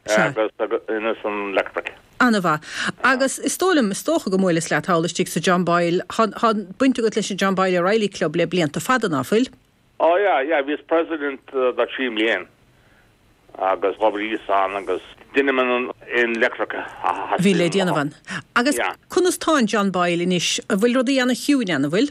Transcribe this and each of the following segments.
Sea. agus ansan leictric. Ana mhaith. Agus is dóigh liom, is dócha gur bhuaileas leat thall istigh sa John Boyle, thá, thá baint agat leis an John Boyle O'Reilly Club le blianta fada, ná fuil? Ó yeah, yeah, bhíos president do trí mbliana agus d'oibríos ann agus deinim an aon leictric a theastaigh Bhí le déanamh ann. Agus Yeah. conas tá an John Boyle anois? An bhfuil rudaí ana chiúin ann, an bhfuil?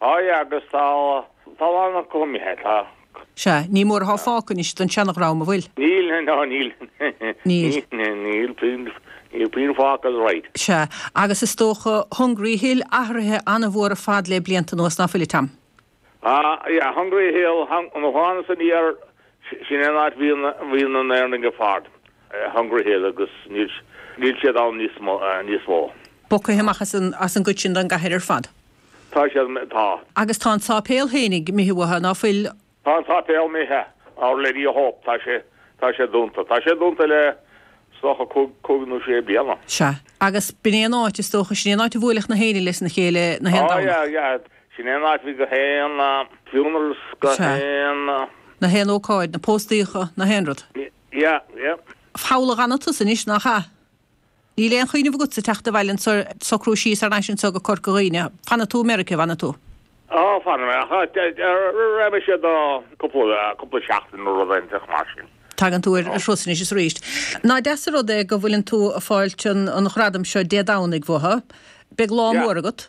Aye agus tá a lán acu imithe. Sea, ní mór athá fágtha anois den seanadhream, an bhfuil? Níl, no níl. Níl. Níl puinn, níl puinn fágtha all right. Sea, agus is dócha Hungry Hill athraithe an-mhór ar fad le blianta anuas, ná fuil a Tom? Ah, yeah, Hungry Hill, hang, nó thána san áit, sin é an áit bhí na, bhí na hÉireannaigh ar fad, Hungry Hill agus níl, níl siad ann níos mo, níos mó. Bogtha amach as an, as an gcuid sin den gcathair ar fad. Tá siad imithe. Tá. Agus tá an sáipéal fhéinig 'mithe uathu, ná fuil? Tá an sáipéal 'mithe, Our Lady of Hope, tá sé, tá sé dúnta. Tá sé dúnta le, is dócha, cúig, cúig nó sé bliana. Sea. Agus b'in é an áit, is dócha, sin é an áit a bhuailfeadh na hÉireannaigh lena chéile na haon Ó yeah, Domhnach. yeah. Sin é an áit a bhí gach aon funerals, go Sea. haon. na haon ócáid, na póstaíocha, na haon rud. Yeah, yeah. Holyoke athánn tusa anois, nach ea? Níl aon chuimhneamh agatsa teacht abhaile agus socrú síos thar n-ais anseo go Corca Dhuibhne. Fanfaidh tú i Meiricea, bhfanfaidh tú? Á, fanfaidh mé, ach raghaidh mise do cúpla seachtain nó rud inteacht mar sin. Tagann tú ar thuras anois is arís. Nach deas an rud é go bhfuileann tú ag fáilt an ghradaim seo Dé Domhnaigh, mhuise? Beidh lá mór agat.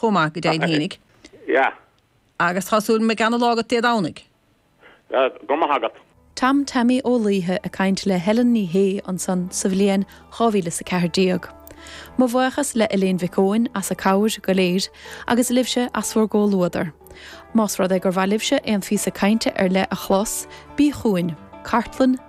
chomh maith, go deimhin fhéinig. Yeah. Agus tá súil agam go mbeidh ana lá agat Dé Domhnaigh. Yeah, go raibh maith agat. Tom Taimí Ó Laoithe ag caint le Helen Ní Shé ansan sa bhliain dhá mhíle is a ceathair déag. Mo bhuíochas le Léan Mhic Eoin as a cabhair go léir agus libhse as bhur gcomhluadar. Más rud é gur mhaith libhse aon phíosa cainte ar leith a chlos, bí chugainn, Cartlann na.